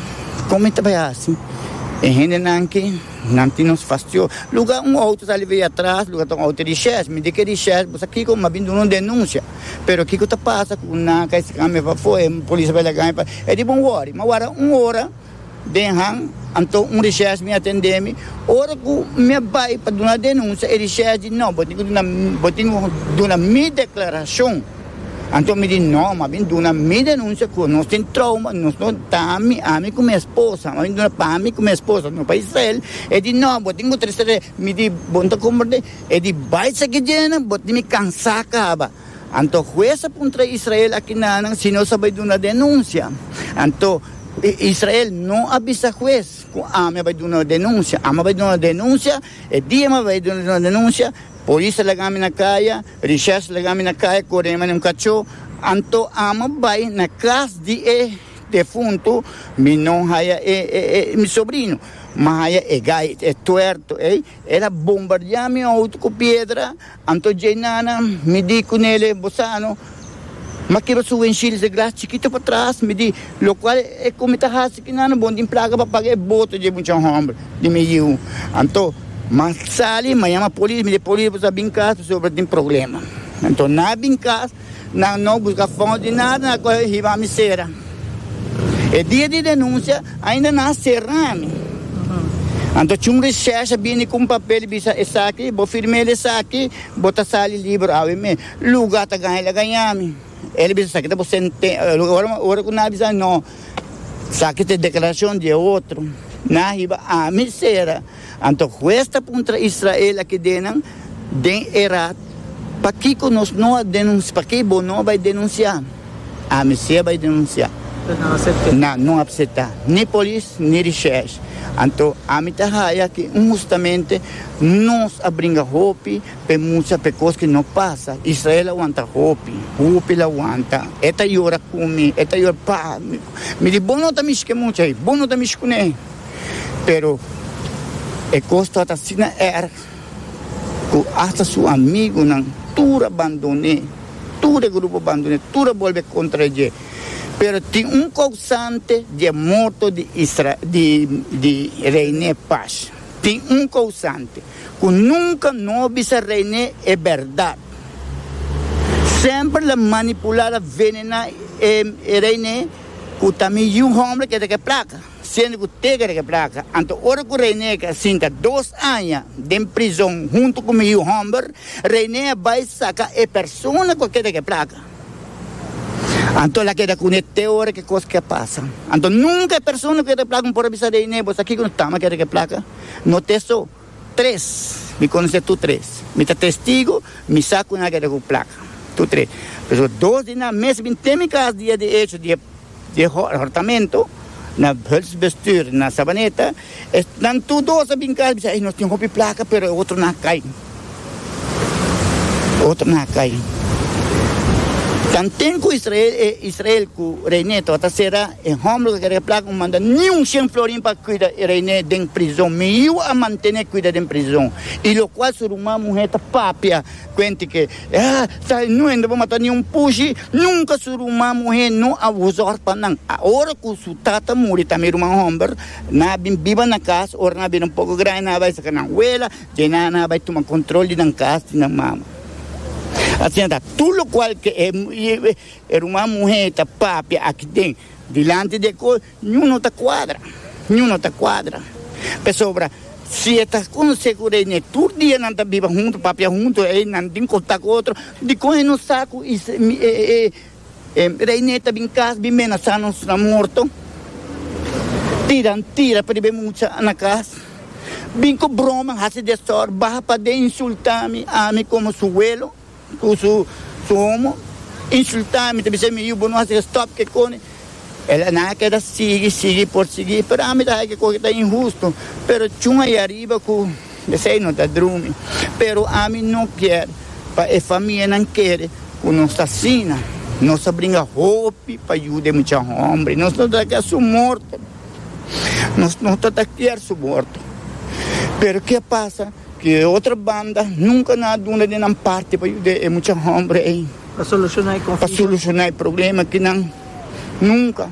con mi ta bay hasi? E hendenan aki, nan tin nos fastio. Luga un auto ta libe atras, luga ta un auto di shes. Mi di, Ke di shes bo sa kico? Mas bien duna un denuncia. Pero kico ta pasa cu nan ka e sican mi pafo, e polis a bay laga mi pa. E di, Bon wori. Mas wara un ora. Den Haag, anto un recherche mi a tende mi. Ora cu mi a bay pa duna denuncia, e recherche di no, bo tin cu duna, bo tin cu duna mi declaracion. Anto mi di no, mabien duna mi denuncia cu nos tin trauma, nos no, ta ami, ami cu mi esposa, mabien duna pa ami cu mi esposa, no pa Israel. E di no, bo tin cu trece re, mi di bo no ta comporta, e di bay sa guejenan, bo tin mi cansa caba. Anto hues a puntra Israel, Akinanan si no sa bai duna denunsia? Anto Israel no a bisa hues ku ami a bai duna denunsia. Ami a bai duna denunsia, e dia mi a bai duna denunsia, polis a laga mi na kaya, richers laga mi na kaya, kore mi na un kachó. Anto ami a bai na kas di e defuntu, mi no haya e mi sobrino, mi haya e gai, e tuerto ei. El a bombardiá mi outo ku piedra. Anto dj'e nana, mi di cu nele, Bo sa no, ma kiba su wenshilus e gras chikito patras, mi di, locual e cu mi ta haci cu nana bon tin placa pa paga e boto dje mucha homber di mi yiu? Anto, m'a sali, m'a yama polis, mi di, polis bo sa bin cas pasobra tin problema. Anto, n'a bin cas. Nan no busca fout di nada, nan a coge hiba mi cera. E dia di denuncia ainda nan a cera mi. Anto c'è un recherche a bini cu un papel y bisa esaki, bo firm'el esaki, bo ta sali liber awe mes. Luga ta gaña el a gaña mi. El a bisa esaki ta bo sente, ora cu nan a bisa no, esaki ta e declaracion di e otro, nan a hiba ami cera. Anto hues ta puntra Israel a kedenan den e rat, Pakiko nos no a denunsiá? Pakiko bo no a bai denunsiá? Ami sí a bai denunsiá. Nan no a apseptá, ni polis ni rechèsh. Anto ami ta haya ku hustamente nos a bringa hopi pa e mucha pa e kos ku no pasa. Israel a wanta hopi, hopi el a wanta. E ta yora ku mi, e ta yora, Pa, mi di bo no ta mishi ku e mucha ei, bo no ta mishi kuné. pero e kos tabata asina erg ku asta su amigunan tur a bandoné, tur e grupo a bandoné, tur a bolbe kontra dje. Pero tin un kousante di e morto di Isra, di, di Reiné Pash. Tin un kousante ku nunka no a bisa Reiné e bèrdat. Semper el a manipulá, el a venená e, e Reiné ku ta mi yu hòmber ke ta ke plaka. Siendo cu teca riba e placa, anto ora cu Reineck a sinta dos aña den prizon hunto cu mi yu homber, Reineck a bay saca e persona cu a keda cu e placa. Anto el a keda cune te ora cu e cos ke pasa. Anto nunca e persona cu keda cu e placa no por a bisa Reineck, Bo sa kico no tama keda cu e placa? No te so. Tres, mi konosé tur tres. Mi ta testigu, mi sa ku nan a keda ku plaka. Tur tres. P'esei dos di nan mes bin ten mi kas dia di echo di e hortamentu, na Hultsbestuur, na Savaneta. Esnan tur dos a bin kas, a bisa, ey, nos tin hopi plaka, pero e otro nan a kai. Otro na cai. Tanten cu Israel, e Israel cu rey ne tabata sera e homber cu a kere placa un manda niun cien florin pa cuida e rey ne den prizon. Mi yiu a mantene cuida den prizon. Y locual su ruman muher ta papia cuente que, Ah, sa e nuende bo mata niun pushi. Nunca su ruman muher no a wuzor pa nan. Ahora cu su tata muri tambe e ruman homber nan a bin biba na cas, ora nan a bira un poco grandi nan a bai saca nan wela. Te nana a bai tuma control di nan cas, di nan mama. Asina ta, tur locual cu e ruman muher ta papia aki den, dilanti di e cos, niun no ta cuadra, niun no ta cuadra. Pasobra si e ta con segura e ne tur dia nan ta biba hunto, papia hunto, e nan tin contacto cu otro, dicon e no sa cu E rei ne ta bin cas bin menasa nos na morto, tiran tira pribe mucha na cas, bin cu broma haci desor, baha paden insulta mi, ami como su huelo cu su homo, insulta mi, ta bisa mi yu bo no haci ke stop ke cone, el a na keda sigui, sigui por sigui, pero ami ta haci ke cosa ta inhusto, pero chunga ahi ariba cu. P'esei nos ta drumi. Pero ami no kier pa e famianan kere ku nos ta asina. Nos a bringa hopi pa yuda e mucha hòmber. Nos no ta kier su morto. Nos no ta ta kier su morto. Pero ke a pasa ku e otro banda nunka no a duna den nan parti pa yuda e mucha hòmber ei. Pa solushoná e problema ku nan nunka.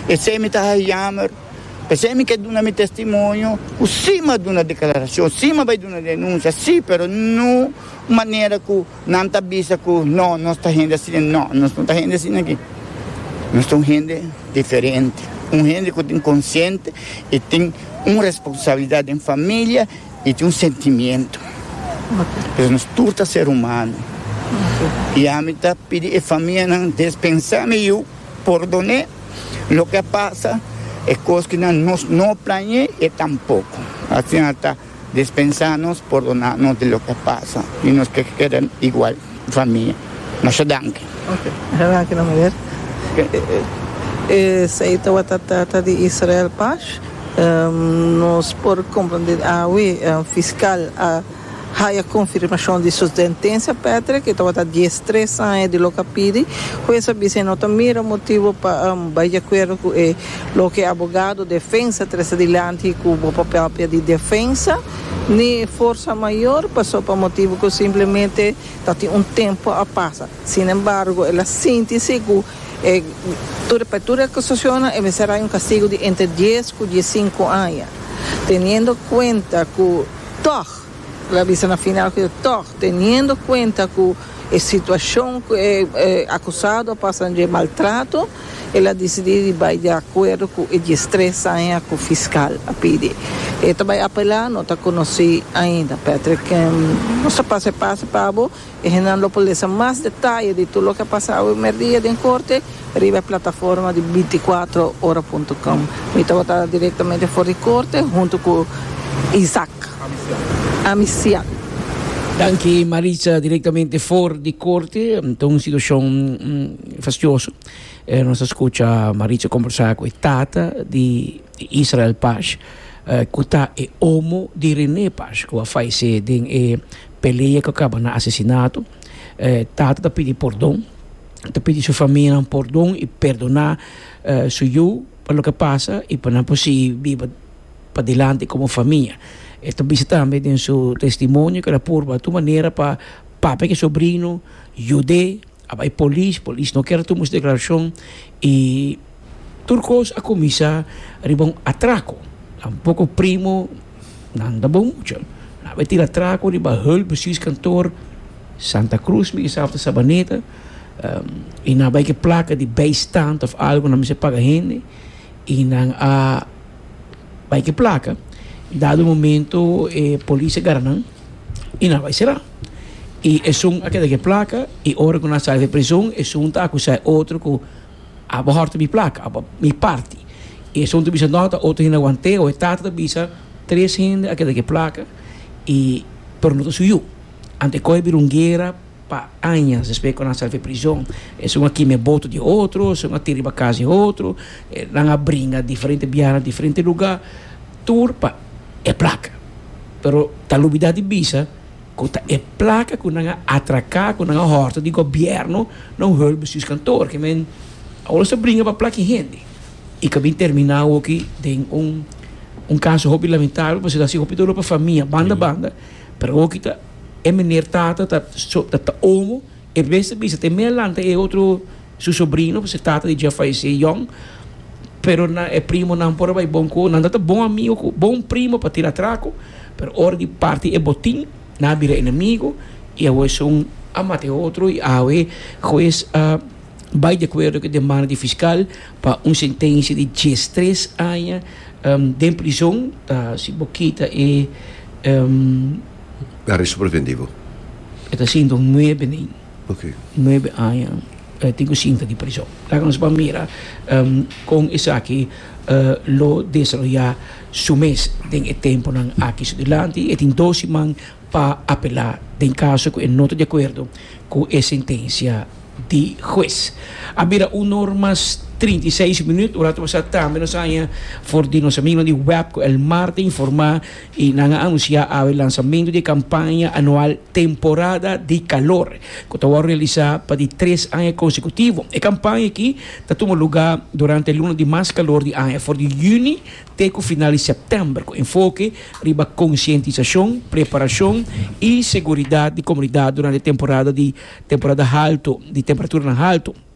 P'esei mi ta haña yammer. P'esei mi ke duna mi testimonio ku si m'a duna deklarashon, si m'a bai duna denunsia, si, pero no un manera ku nan ta bisa ku no, nos ta hende asina. No, nos no ta hende asina aki. Nos ta un hende diferente. Un hende ku tin konsiente i tin un responsabilidat den familia i tin un sentimiento. Pero nos tur ta ser humano. I ami ta pidi e famianan, despensa mi yu. Pordone loke a pasa, e kos ki nan nos no plañe e tampoko. Asin a ta dispensá nos, pordoná nos di loke a pasa i nos ke keda igual famia. Masha danki. Oke, masha danki na muher. Esei tabata trata di Israel Pash. Nos por komprendé awe fiskal a. Haya konfirmashon di su sentensia Patrick e tabata dies tres aña di loke a pidi. Hues a bisa e no ta mira motibu pa bai di akuerdo ku e loke abogado defensa trese dilanti ku bo papel pia di defensa ni forsa mayor paso pa motibu ku simplemente ta tin un tempu a pasa. Sinembargo el a sinti si ku e tur pa tur e akusashonnan e mester haya un kastigu di entre dies ku diesinku aña teniendo kuenta ku Tòg, lo a bisa na final ku yo, tòg teniendo kuenta ku e situashon ku e akusado a pasa dje maltrato, el a disidí di bai di akuerdo ku e dies tres aña ku fiskal a pidi. E ta bai apelá, no ta konosí ainda. Patrick, Nos ta pasa e pase pa bo. E hendenan lo por lesa mas detaye di tur loke a pasa awe merdia den korte riba e plataforma di binticuatro ora punto com. Mi tabata direktamente for di korte huntu ku Isaac Amisian. Danki Maritza, direktamente for di korte. Ta un situashon fastioso. Nos a skucha Maritza kombersá ku e tata di Israel Pash, ku ta e omo di René Pash ku a fayesé den e. Pelea ku kaba na asesinato. E tata ta pidi pordon, e ta pidi su famianan pordon i perdoná su yu pa loke pasa i pa nan por sigui biba padilanti komo famia. E ta bisa tambe den su testimonio ku el a purba tur manera pa papia ku e sobrino yud'é. A bai polis, polis no kier a tuma su declaracion y tur cos a cuminsa riba un atraco. Un poco primo nan ta bon mucha. Nan a bai tira atraco riba Hulp Bestuurs Kantoor Santa Cruz, mi kisa of ta Sabaneta, y nan a bai ke placa di bijstand of algo, nan mester paga hende y nan a bai ke placa. Dado momento e polis a gara nan. y nan a bay sera. Y esun a keda cu e placa y ora cu nan a sali den e prision esun ta acusa e otro cu abo horta mi placa, abo mi parti. Y esun ta bisa no ta otro hende a wante o e tata ta bisa tres hende a keda cu e placa y pero no ta su yu. Anto e coge a bira un guera pa aña despues cu nan a sali den e prision. Esun a kima e boto di e otro, esun a tira riba casa di e otro, nan a bringa diferente biaha na diferente lugar. tur pa e plaka, pero ta lubida di bisa ku ta e plaka ku nan a atraka, ku nan a hòrta di gobièrnu na un hòl bestuurskantoor. Ke men awor sta bringa pa plaki hende i ka bin terminá awoki den un un kaso hopi lamentabel pasobra ta hasi hopi doló pa famia banda banda, pero awoki ta e meneer Tata ta ta omo E mes ta bisa te mea lanta e otro su sobrino, pasobra e tata di dja fallecé yong, pero nan e primonan por a bai bon cu nan ta ta bon amigo cu bon primo pa tira traco, pero ora di parti e botin nan a bira enemigo y awe esun a mata e otro y awe huez a bai di acuerdo cu e demanda di fiscal pa un sentencia di diestres aña den prison ta si bo kita e Aresto preventivo. E ta sinta un nuebe nin. Ok. Nuebe aña e tin ku sinta di prison. Laga nos ban mira kon esaki lo desaroyá su mes den e tempunan aki. So dilanti e tin dos siman pa apelá den kaso ku e no ta di akuerdo ku e sentensia di hues. A bira un or mas trinta i seis minüt. Un ratu pasá tambe nos haña for di nos amigonan di web ku el Marta informá. y nan a anuncia awe lanzamento di e campaña anual Temporada di Calor, cu ta wou realisa pa di tres aña consecutivo. E campaña aki ta tuma luga durante e luna di mas calor di aña, for di juni te cu final di september, cu enfoke riba concientisacion, preparacion y seguridad di comunidad durante e temporada di temporada halto di temperaturan halto.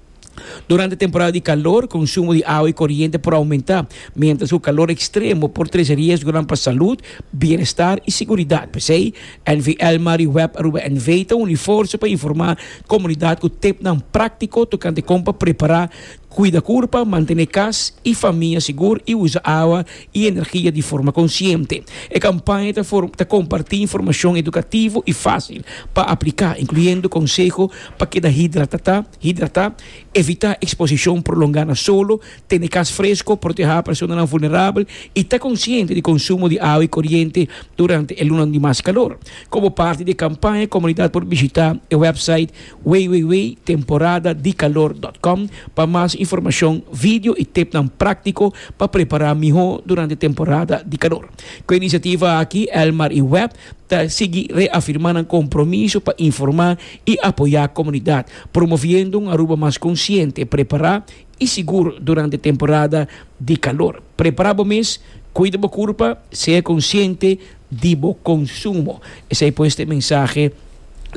Durante temporada di kalor, konsumo di awa i koriente por oumentá, miéntras ku kalor ekstremo por trese riesgonan pa salud, bienestar i seguridat. P'esei, NVL Mari Web Aruba NV. ta uni forsa pa informá komunidat ku tipnan práktiko tokante kon pa prepará, kuida kurpa, mantené kas i famia sigur i usa awa. i energia di forma konsiente. E kampaña ta ta kompartí informashon edukativo i fásil pa apliká, inkluyendo konseho pa keda hidratatá hidratá, evitá eksposishon prolongá na solo, tene kas fresko, protehá personanan vulnerabel i ta konsiente di konsumo di awa i koriente durante e lunanan di mas kalor. Komo parti di e kampaña, komunidat por bishitá e wèpsait. www.temporadadicalordotcom pa mas informacion, video y tipnan practico pa prepara miho durante temporada di calor. Cu e iniciativa aki, Elmar y Web ta sigui reafirma nan compromiso pa informa y apoya comunidad, promoviendo un Aruba mas consciente, prepara I sigur durante temporada di kalor. Prepara bo mes, kuida bo kurpa, sea konsiente di bo konsumo. Esei pues ta e mensahe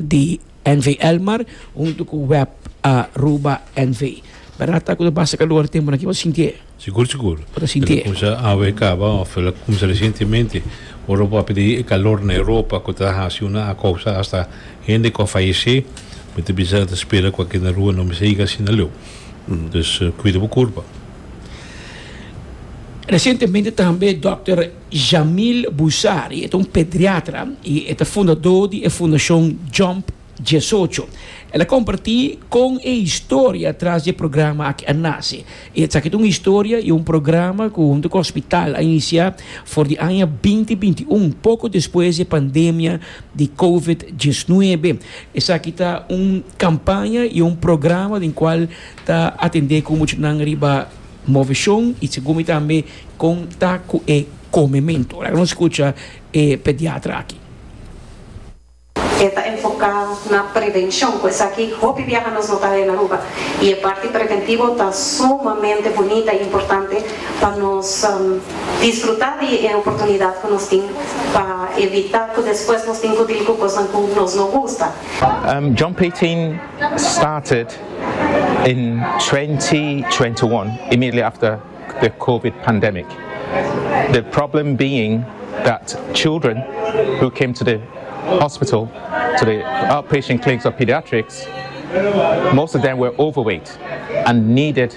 di NV. Elmar huntu ku web Aruba NV. Berdad ta ku ta basa kalor temponan aki? Bo ta sinti e? Sigur sigur. Bo ta sinti e? E ta kuminsa awe kaba òf e la kuminsa resientemente. Ora bo a pidi e kalor na Europa ku ta hasi una a kousa asta hende ku a fayesé, mi ta bisa ta spera ku aki na rua no mester yega asina leu. Dus cuida bo curpa. Recientemente tambe Dòkter Jamil Bousari, e ta un pediatra i e ta fundadó di e fundacion Jump Diesocho, el a compartí con e historia tras di e programa aki a nace. I esaki ta un historia i un programa cu hunto cu hospital a iniciá for di aña binti binti un, poco despues di e pandemia di covid diesnuebe. Esaki ta un kampaña i un programa den kual ta atendé ku muchanan riba moveshon i segun mi tambe kon ta ku e komementu. Laga nos skucha e pediatra aki. E ta enfoká na prevenshon, ku esaki hopi biaha nos no ta haña na Aruba i e parti preventivo ta sumamente bunita i importante pa nos. disfrutá di e oportunidat ku nos tin pa evitá ku despues nos tin ku dil ku kosnan ku nos no gusta. John Payton started in twenty twenty one immediately after the covid pandemic the problem being that children who came to the hospital to the outpatient clinics of pediatrics most of them were overweight and needed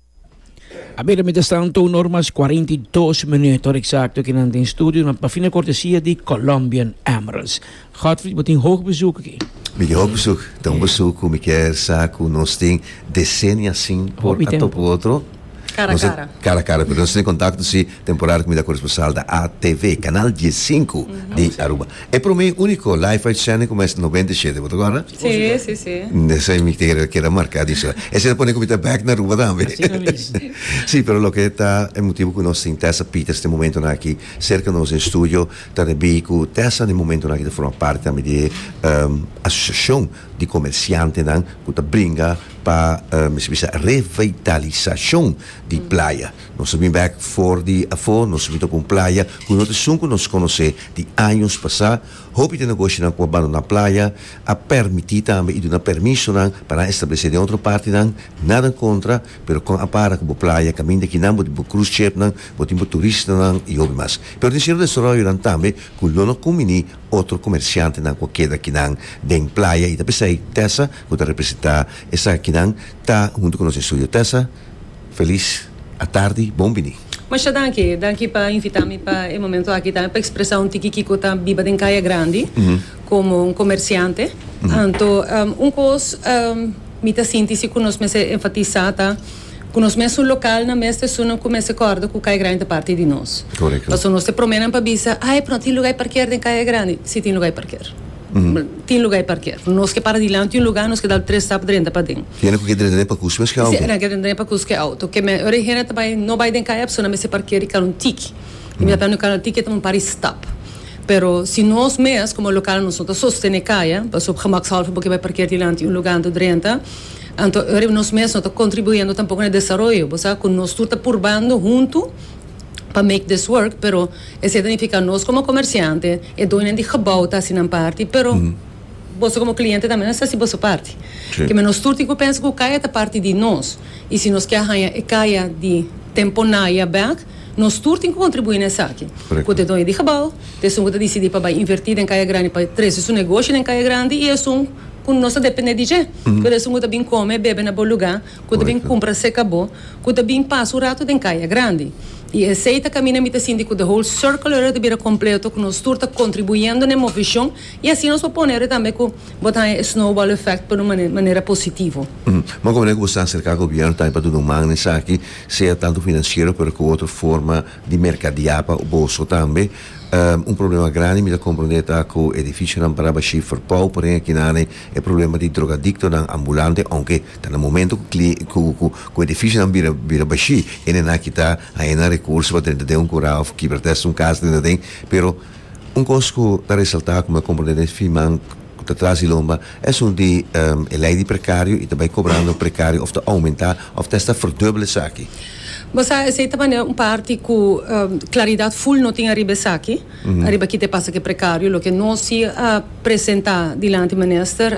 A mira, mientras tanto, un or mas cuarenta y dos minuut, hora exacto ki nan den studio nan pa fina cortesia di Colombian Emeralds. Godfried, bo tin hoog bezoek aki. Mi tin hoog bezoek, ta un bezoek cu mi kier sa cu nos tin decennia sin por a topo otro. Cara a cara. Cara a cara, pero nos tin e contacto si. Temporada cu mi ta coresponsal na ATV, canal die sinku di Aruba. E prome y unico live uitzending cu mes noventa y shete, bo ta guarda? Sí, sí, sí. Esey mi quier keda marca di eso. Esey ta pone cu mi ta back na Aruba tambe. Asina mesmo. Sí, pero loke ta e motibo cu nos tin Tessa Peters den momentonan aki cerca nos den studio, ta ribí cu Tessa den momentonan aki ta forma parti tambe di e asociacion di comerciantenan cu ta bringa pa mi bisa revitalisacion di playa. Nos ta bin bek for di afó, nos ruta ku un playa ku no ta esun ku nos konosé di años pasá. Hopi den nogoshinan ku a bandoná playa a pèrmití tambe i duna permisonan pa nan establesé den otro partinan. Nada en kontra, pero kon a para ku bo playa kaminda ki nan, bo tin bo krus shepnan, bo tin bo turistanan i hopi mas. Pero tin seru desaròyonan tambe ku lo no kumbiní otro komersiantenan ku a keda akinan den playa i ta p'esei Tessa ku ta representá esaki kinan ta huntu ku nos estudio. Tessa. Feliz atardi, bon bini. Masha danki, danki pa invita mi pa e momento aki tambe pa expresa un tiki kico ta biba den Caya Grandi como un comerciante. Anto un cos mi ta sinti si cu nos mester enfatisa ta cu nos mes un local na mes te sunan cu mester corda cu Caya Grandi ta parti di nos. Correcto. Pasobra nos te prome nan pa bisa, ay pero no tin lugar di parkeer den Caya Grandi. Si tin lugar di parkeer. Tin luga di parker. Nos ke para dilanti un luga, nos ke dal tres stap drenta paden. Y nan ku ke drenta den pa kuski mes ke auto? Si, nan ke drenta den pa kuski auto. Ke me, ora e hende ta bai, no bai den kaya, e persona mester parkera e karonan tiki. Y mi ta planea e karonan tiki ta un par di stap. Pero si nos mes, komo lokal, nos no ta sostene kaya, pas op gemakshalve bo ke bai parkera dilanti un luga anto drenta, anto ora nos mes no ta kontribuendo tampoko na e desaroyo. Bo sa ku nos tur ta purbando huntu. pa make this work pero esei ta nifica nos como comerciante e doñonan di gebouw ta haci nan parti pero boso como cliente tambe nos ta haci boso parti keme nos tur tin cu pensa cu caya ta parti di nos y si nos kier haya e caya di tempo naya back nos tur tin cu contribui na esaki cu te doño di gebouw ta esun cu ta dicidi pa bay inverti den caya grandi pa trece su negoshi den caya grandi y esun cu nos ta depende di dje pero esun cu ta bini come bebe na bo lugar. ku ta bin kumpra seka bo ku ta bin pasa un ratu den kaya grandi. I esei ta kaminda mi ta sinti ku the whole circle ora ta bira kompleto ku nos tur ta kontribuyendo na e movishon i asina nos por pone ora tambe ku bo ta haña e snowball effect pa un manera positivo. Bon, kome ku bo sa aserká gobièrnu tambe pa duna un man na esaki, sea tantu finansiero pero ku otro forma di merkadiá pa bo so tambe. Un problema grandi mi ta komprondé ta ku edifisionan parabashí forpou, por ehi akinane e problema di drogadiktonan ambulante, ounke Ta na momento cu cli cu cu cu edificionan bira bira bashí e nen aki ta haña recurso pa drenta den un curá of kibra ta hasi un cas drenta den pero un cos cu ta resaltá cu mi a comprende den fiman cu ta tras di lomba es un di e ley di precario y ta bay cobrando precario of ta aumentá of ta hasta verduble esaki. Bo sa esey ta manera un parti cu claridad full no tin ariba esaki ariba ki ta e pasa cu e precario loke nos si a presentá dilanti minister.